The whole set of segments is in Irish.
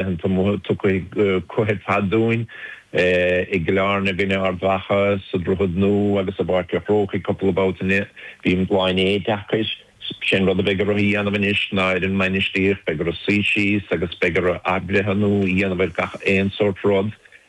Tiocfaidh cluiche caid dúinn i gCill Airne i gcoinne Ard Mhacha sa Droichead Nua agus i bPáirc a' Chrócaigh cúpla babhta eile. Bhí an lá inné deacair. 'Sé an rud a bheidh orthu a dhéanamh anois ná ar an mbainistíocht, beidh orthu suí síos agus beidh orthu athbhreithniú a dhéanamh ar gach aon sórt rud.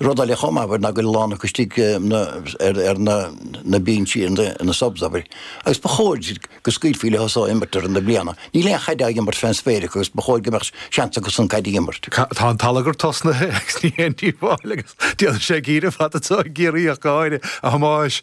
Rud eile chomh maith abair ná go bhfuil a lán acu istigh ar na binsí ina subs abair agus ba chóir go scaoilfí leo seo imirt i rith na bliana. Níl aon chaid á imirt fén spéir acu agus ba chóir go mbeadh seans acusan caid a imirt. Tá an t-allagar tosnaithe agus ní haon díobháil agus déanfaidh sé ag iarraidh fad atá ag iarraidh ach gáire, a Thomáis,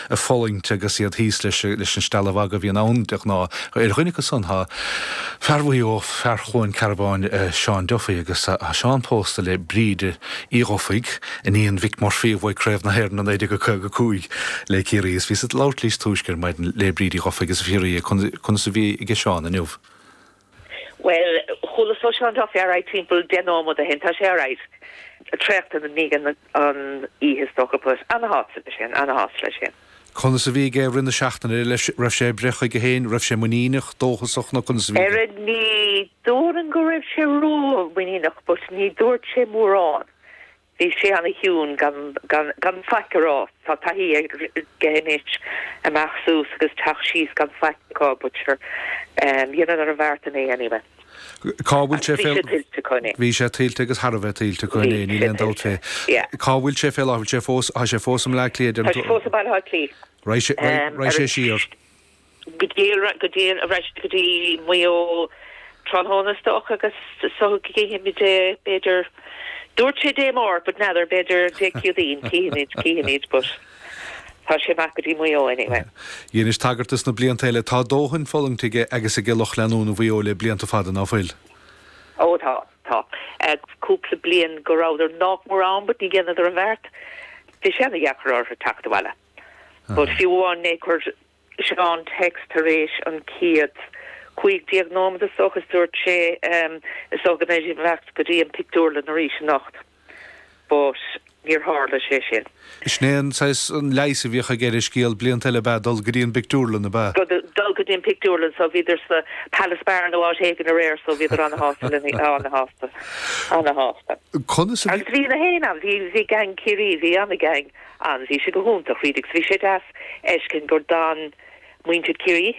ag fulaingt agus iad thíos leis an steallmhagadh a bhíonn ann de ghnáth. Ar dhuine acu san tá fear Mhaigh Eo, fear Chluain Cearbáin, Seán Duffy agus tá Seán pósta le Bríd Uí Dhufaigh, iníon Mhick Murphy a bhuaigh Craobh na hÉireann i 1955 le Ciarraí is bhíos ag labhairt níos túisce ar maidin le Bríd Uí Dhufaigh is á fhiafraí di conas a bhí aige Seán inniu. Bhuel, chualasa ó Seán Duffy alright timpeall deich nóiméad ó shin. Tá sé alright traochta i ndiaidh na hoíche is dócha. But ana-shásta leis féin, ana-shásta leis féin. Conas a bhí aige i rith na seachtaine ar leis? Raibh sé ag breith chuige féin? Raibh sé muiníneach, dóchasach nó conas a bhí aige? Ara, ní déarfainn go raibh sé ró-mhuiníneach but ní dúirt sé mórán. Bhí sé ana chiúin gan faic a rá. Tá taithí aige anois imeacht suas agus teacht síos gan faic acu but dhéanadar an bheart inné anyway. Cá bhfuil sé fé. Bhí sé tuillte acu inné. Bhí sé tuillte agus thar a bheith tuillte acu inné, níl aon dabht fé. Cá bhfuil sé fé láthair? Tá sé fós i mBleá Cliath, déarfainn. Tá sé fós i mBaile Átha Cliath. Raghaidh sé siar. go dtí arís go dtí Maigh Eo tráthnóna is dócha agus so chífimid é b'fhéidir dúirt sé Dé Máirt but n'fheadar b'fhéidir Dé Céadaoin chífimid chífimid but tá sé ag imeacht go dtí Maigh Eo anyway. Dheinis tagairt dos na blianta eile tá dóthain fulaingthe aige agus aige lucht leanúna Mhaigh Eo le blianta fada ná fuil? Ó tá tá. Cúpla bliain go rabhadar nách mór ann but ní dhéanadar an bheart bhí sé ana dheacair orthu teacht abhaile. But fiú amháin inné chuir Seán text tar éis an chéad cúig déag nóimead is dócha is dúirt sé Is dócha go mbeidh mé ag teacht go dtí an pictiúrlann arís anocht. But níor tharla sé sin. Sin é an saghas an leigheas a bhíodh aige ar an scéal blianta eile ab ea dul go dtí an bpictiúrlann, ab ea? Dul go dtí an pictiúrlann so bhíodar sa Palace Bar nó áit éigin aréir so bhíodar ana-shásta leo féin, ana-shásta, ana-shásta. Conas a bhí? Agus bhí gach éinne ann, bhí gang Ciarraí, bhí ana-gang. Ann bhí sé go hiontach, read Bhí sé deas a fheiscint gur d'fhan muintir Chiarraí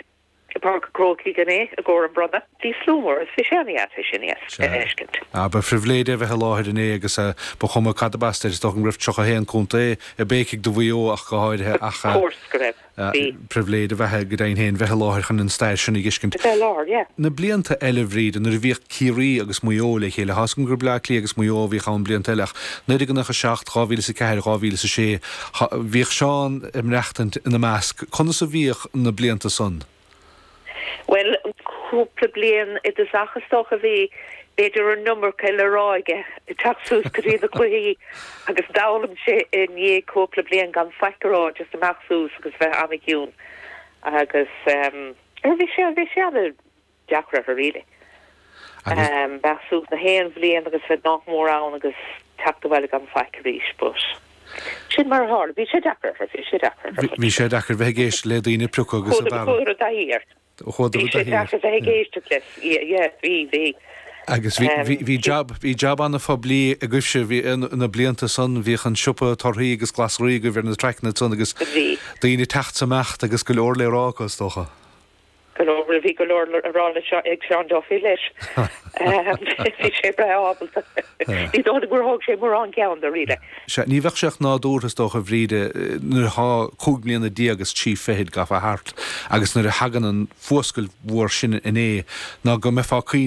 i bPáirc a Chrócaigh inné i gcomhair an bronnadh. Bhí slua mór is bhí sé ana-dheas é sin a fheiscint. Sea. Ba phribhléid é a bheith i láthair inné agus ba chuma cad ab as duit, is dócha go raibh 31 contae ag béicigh do Mhaigh Eo ach go háirithe ach. Of course go raibh. Sea. Pribhléid a bheadh ag Dian féin bheith i láthair chun an stair sin a dh'fheiscint. Bheith i láthair, yeah. Na blianta eile, a Bhríde, nuair a bhíodh Ciarraí agus Maigh Eo le chéile, thá a fhios agam gur Bleá Cliath agus Maigh Eo a bhíodh ann blianta eile ach nuair a ghnách a 7, 2000 is a 4, 2000 is a 6, thá, bhíodh Seán ag maireachtaint ina measc. Conas a bhíodh na blianta san? Bhuel, cúpla bliain i dtosach is dócha a bhí, b'fhéidir an iomarca le rá aige, ag teacht suas go dtí na cluichí agus d'fhoghlaim sé i ndiaidh cúpla bliain gan faic a rá, just imeacht suas agus bheith an-chiúin agus eh, bhí sé, bhí sé an-deacair orthu really. agus. Bheith suas gach aon bhliain agus bheith nach mór ann agus teacht abhaile gan faic arís. But sin mar a tharla. Bhí sé deacair orthu, bhí sé deacair orthu. Bhí sé deacair bheith ag éisteacht le daoine ag priocadh agus ag bearradh. Chuadar i dtaithí air. Chuadar i dtaithí air. Bhí sé deacair bheith ag éisteacht leis. Yeah, bhí, bhí. Agus bhí jab, bhí jab an-phoiblí agaibhse, bhí, na blianta san, bhíodh an siopa torthaí agus glasraí agaibh ar na traiceanna san agus daoine ag teacht 's imeacht agus go leor le rá acu is dócha. Go leor bhí go leor le rá leis seo ag Seán dóibh leis. Bhí sé breá ábalta. Ní dóigh gur thóg sé mórán ceann de really. Sea, ní bheadh sé ach nádúrtha is dócha a Bhríde nuair athá cúig mbliana déag is trí fichid gafa thart agus nuair a thagann an fuascailt mhór sin inné ná go mbeifeá ag caoineadh